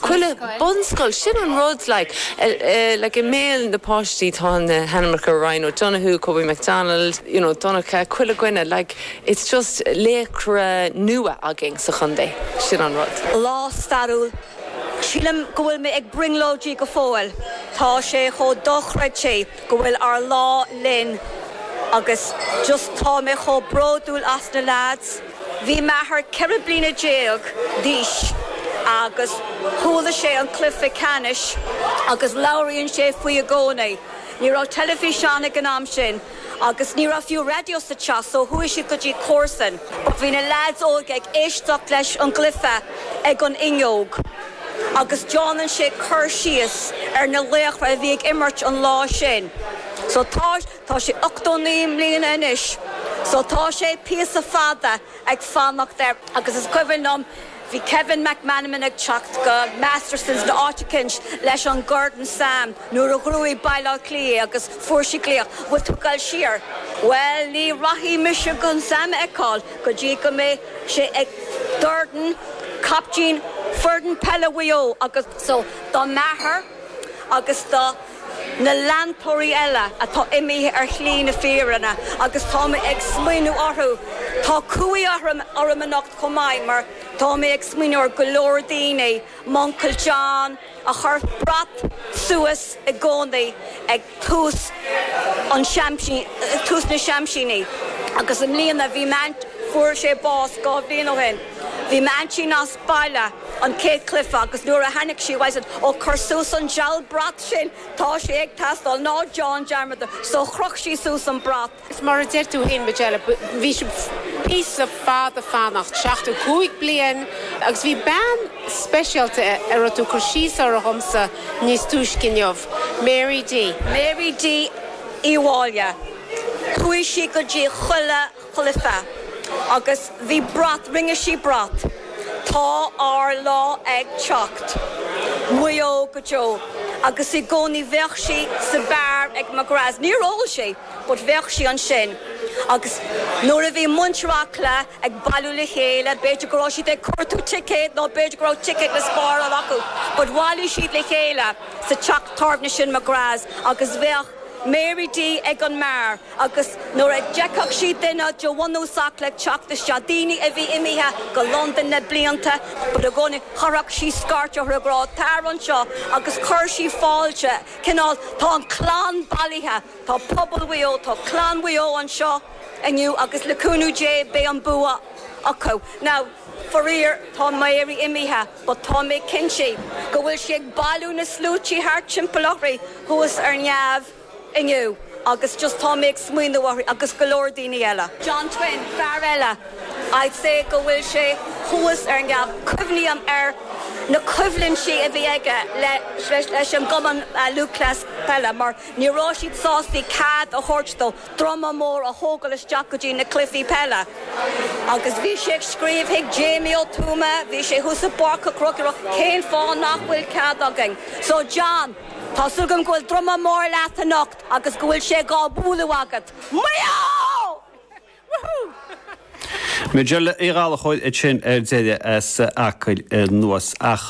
Chuile bunscoil, sin an rud, like, i mbéal na bpáistí tá na hainmneacha, Ryan O'Donoghue, Kobe McDonald, you know, Donncha, chuile dhuine, like, it's just laochra nua againn sa chontae, sin an rud. Lá stairiúil. Sílim go bhfuil mé ag brionglóidí go fóill, tá sé chomh dochreidte go bhfuil ár lá linn agus just tá mé chomh bródúil as na leaids, Bhí m'athair ceithre bliana déag d'aois agus chuala sé an cluiche ceannais agus labhraíonn sé faoi i gcónaí. Ní raibh teilifíseán ag an am sin agus ní raibh fiú raidió sa teach so chuaigh siad go dtí comharsain a bhí na leaids óige ag éisteacht leis an gcluiche ag an fhuinneog agus déanann sé cur síos ar na laochra a bhí ag imirt an lá sin. So tá. Tá sé 89 mbliana anois so tá sé píosa fada ag fanacht air agus is cuimhin liom bhí Kevin McManamon ag teacht go Masterson's in áit eicint leis an gcorn Sam nuair a ghnóthaigh Baile Átha Cliath agus fuair sé glaoch, bhfuil tú ag dul siar? Bhuel ní rachaidh mise chun Sam a fheiceáil go dtí go mbeidh sé ag Gordon, caiptín fhoireann peile Mhaigh Eo agus so do m'athair agus do. na leantóirí eile atá imithe ar shlí na fírinne agus tá mé ag smaoineamh orthu. Tá cumhaidh orm anocht chomh maith mar tá mé ag smaoineamh ar go leor daoine, m'uncail John a chuir brat suas i gcónaí ag tús na Championship, agus i mbliana bhí m'aint, fuair sé bás dhá bhliain ó shin, bhí m'aintín as baile. an chéad chluiche agus nuair a tháinig sí I just said ó cuir suas an diabhal brat sin tá sé ag teastáil ná déan dearmad de so chroch sí suas an brat. Is mar a deir tú fhéin Majella bhí sé píosa fada ag fanacht, seachtó cúig bliain agus bhí bean speisialta a raibh tú ag cur síos uirthi dhomsa níos túisce inniu, Mary D. Mary D. Uí Mháille. Chuaigh sí go dtí chuile chluiche agus bhí brat, rinne sí brat, Tá ár lá ag teacht. Maigh Eo go deo. Agus i gcónaí bheadh sí sa bheár ag McGrath's, níor ól sí but bheadh sí ansin agus nuair a bhí muintir Acla ag bailiú le chéile, b'fhéidir go raibh siad ag cuartú ticéad nó b'fhéidir go raibh ticéad le spáráil acu but bhailigh siad le chéile sa teach tábhairne sin McGrath's agus bheadh Mary D ag an mbeár. agus nuair a d'fheicfeadh sí duine de bhunús Acla ag teacht isteach, daoine a bhí imithe go Londain le blianta, but i gcónaí, chuirfeadh sí scairt orthu ag rá, Tar anseo, agus chuir sí fáilte, cineál, tá an chlann bailithe, tá pobal Mhaigh Eo, tá clann Mhaigh Eo anseo inniu agus le cúnamh Dé beidh an bua acu. Now, faraor, tá Mary imithe, but tá mé cinnte go bhfuil sí ag bailiú na sluaite thart timpeall uirthi thuas ar neamh. inniu agus just tá mé ag smaoineamh uirthi agus go leor daoine eile. John Twine, fear eile, I'd say go bhfuil sé thuas ar neamh. Cuimhním ar na coimhlintí a bhí aige leis an gCumann Lúthchleas Gael mar ní raibh siad sásta cead a thabhairt dó druma mór a thógáil isteach go dtí na cluichí peile agus bhí sé ag scríobh chuig Jamie Ó Tuama, bhí sé thuas i bPáirc an Chrócaigh, ag rá cén fáth nach bhfuil cead againn? So John. Tá súil agam go bhfuil druma mór leat anocht agus go bhfuil sé dhá bualadh agat. Maigh Eo! Majella Uí Ghallachóir iad sin ar deireadh as Acaill anuas. Ach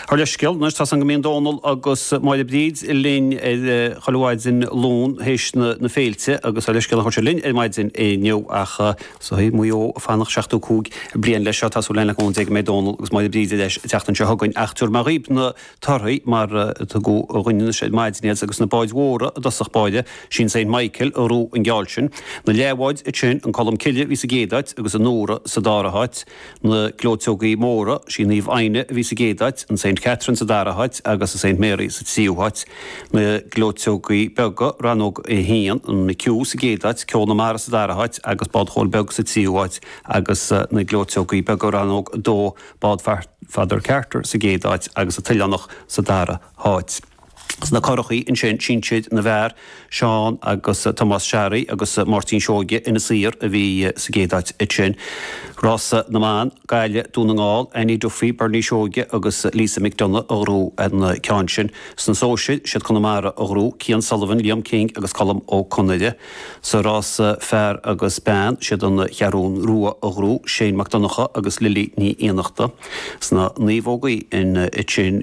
dála an scéil anois, tá a fhios againn go mbíonn Dónal agus Máire Bríd linn 'chuile mhaidin Luain théis na féilte agus dála an scéil a thabhairt linn ar maidin inniu ach bhí Maigh Eo ag fanacht 75 bliain leis seo. Tá súil againn go mbeidh Dónal agus Máire Bríd ar ais an tseachtain seo chugainn ach tiúrfaidh mé dhaoib na torthaí mar a tugadh dhúinn iad ar maidin agus na báid mhóra i dtosach báire, sí an Saint Michael a ghnóthaigh an geall sin, na leathbháid ansin, an Colm Cille a bhí sa gcéad áit agus an Nora sa dara háit, na gleoiteogaí móra, sí an Naomh Aidhne a bhí sa gcéad áit, an Saint Catherine sa dara háit agus an Saint Mary sa tríú háit, na gleoiteogaí beaga, rannóg a haon, an McHugh sa gcéad áit, Ceol na Mara sa dara háit agus bád Chóil Beag sa tríú háit agus na gleoiteogaí beaga, rannóg a dó, Bád Pheadar Carter sa gcéad áit agus An tOileánach sa dara háit. Sna curachaí ansin, sinsir na bhfear, Seán agus Tomás Sharry agus Máirtín Seoige Inis Oírr a bhí sa gcéad áit ansin. Rása na mBan, Gaillimh, Dún na nGall, Annie Duffy, Bernie Seoige agus Lisa McDonagh a ghnóthaigh an ceann sin. Sna sóisir, siad Conamara a ghnóthaigh, Cian Sullivan, Liam King agus Colm Ó Conaire. Sa rása fear agus bean, siad an Cheathrú Rua a ghnóthaigh, Shane Mac Donnacha agus Lily Ní Fhiannachta. Sna naomhógaí, an tSin